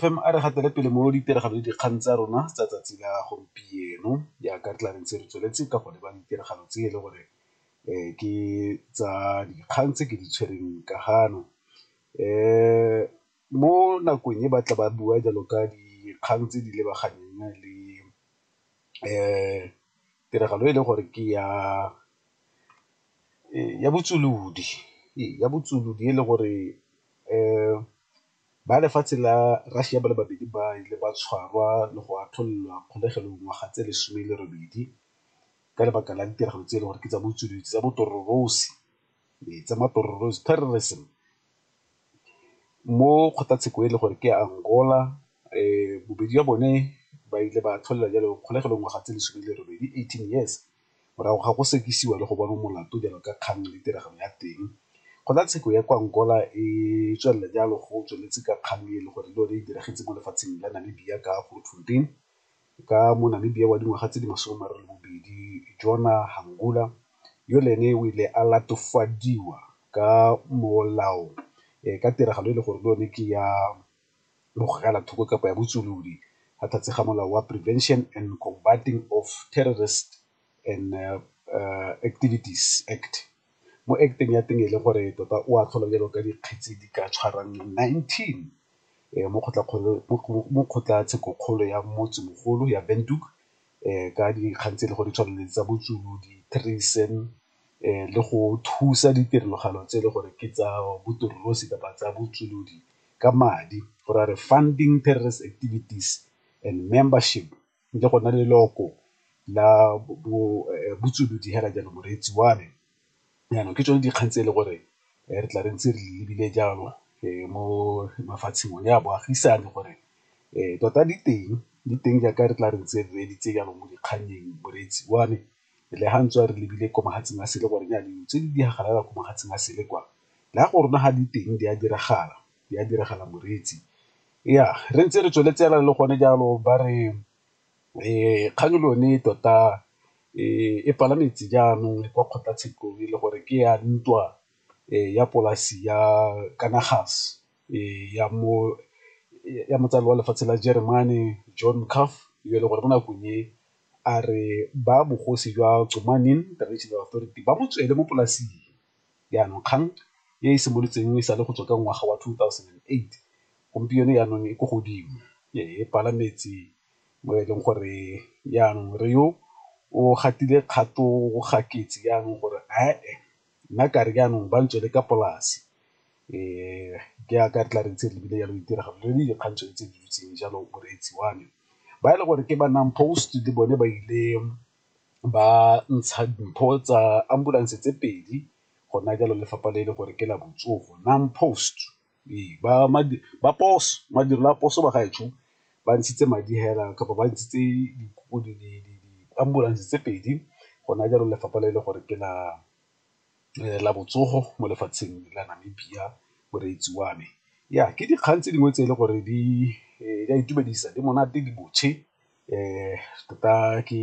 fm a re gatele pele mo ditiragalo le dikgang tsa rona tsa tsatsi la gompieno jaaka re tla re ntse re tsweletse ka go leba ditiragalo tse e le gore um ke tsa dikgang tse ke di tshwereng ka gano um mo nakong e batla ba bua jalo ka dikgang tse di lebaganeng le um tiragalo e le gore ke ya ya botsolodi ya botsolodi e le gore ba lefatshe la Russia ba le babedi ba ile ba tshwarwa le go atlholelwa kgolegelo ngwaga tse lesome le robedi ka lebaka la ditiragalo tse e le gore ke tsa botsolodi tsa botororosi. ee, tsa matororosi terrorism mo kgotlatsheko e le gore ke angola um bobedi ya bone ba ile ba tlholela jalo kgolegelo ngwaga tse lesome le robedi eighteen years morago ga go sekisiwa le go bona molato jalo ka kgang le tiragalo ya teng kgotlatsheko ya kwa angola e tswelela jalo go tsweletse ka kgang e le gore le yone e diragetse mo lefatsheng la namibia ka grootfontein ka mo Namibia wa dingwaga tse di masome a mararo le bobedi, Jona Hangula, yo le ene o ile a latofadiwa ka molao ka tiragalo e le gore le yone ke ya bogela thoko kapa ya botswolodi ga tlhatse ga molao wa Prevention and Combating of Terrorist and uh, uh, Activities Act mo acteng ya teng e le gore tota o a tlhola jalo ka dikgetsi di ka tshwarang 19 eh, mo kgotlatshekokgolo ya motse mogolo ya benduk eh, ka dikgang tse e le gore tshwanele tsa botsulu di-treason eh, le go thusa ditirelogalo tse e le gore ke tsa botorolosi kapa tsa botsulodi ka madi go ra re funding terrorist activities and membership nkile go nna le leloko la botsolodi fela jalo moreetsi wa me. Jaanong ke tsone dikgang tse e le gore re tla re ntse re lebile jalo mo mafatsheng one a boagisane gore tota di teng, di teng jaaka re tla re ntse re reeditse jalo mo dikgannyeng moreetsi wa me le ga ntswe re lebile ko mohatseng a sele gore dilo tse di diragalang ko mohatseng a sele kwa le ga gore ga di teng di a diragala. di a diragala moreetsi. Ya re ntse re tsweletse fela le gone jalo ba re kgang le yone tota e palametse jaanong kwa kgotlatshekelo e le gore ke ya ntwa ya polasi ya kana gas ya mo ya motsadi wa lefatshe la jeremane John Curve yo e leng gore mo nakong e a re ba bogosi jwa Tsomaneng Traditional Authority ba mo tswele mo polasing. Jaanong, kgang e e simolotseng e sa le go tswa ka ngwaga wa 2008, gompieno jaanong e ko godimo, e pala metsi mo e leng gore jaanong re yo o gatile kgato ga ketse jaanong gore ae nna ka re jaanong ba ntswele ka polase jaaka re tla re ntse re lebile jalo ditiragalo le dikgang tsone tse di dutseng jalo moreetsi wa me. Ba e le gore ke ba NAMPOST le bone ba ile ba ntsha dimpho tsa ambulance tse pedi gona jalo lefapha le e le gore ke la botsogo NAMPOST ee ba madirelo a poso ba gaetsho ba ntshitse madi hela kapa ba ntshitse di-ambulance tse pedi gona jalo lefapha le e le gore ke la botsogo mo lefatsheng la Namibia moreetsi wa me. Ke dikgang tse dingwe tse e le gore di a itumedisa, di monate, di botshe. Tota ke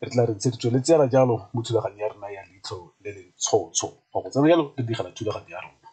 re tla re ntse re tsweletse fela jalo mo thulaganyong ya rona ya leitlho le le ntshotsho go tsena jalo re direla thulaganyo ya rona.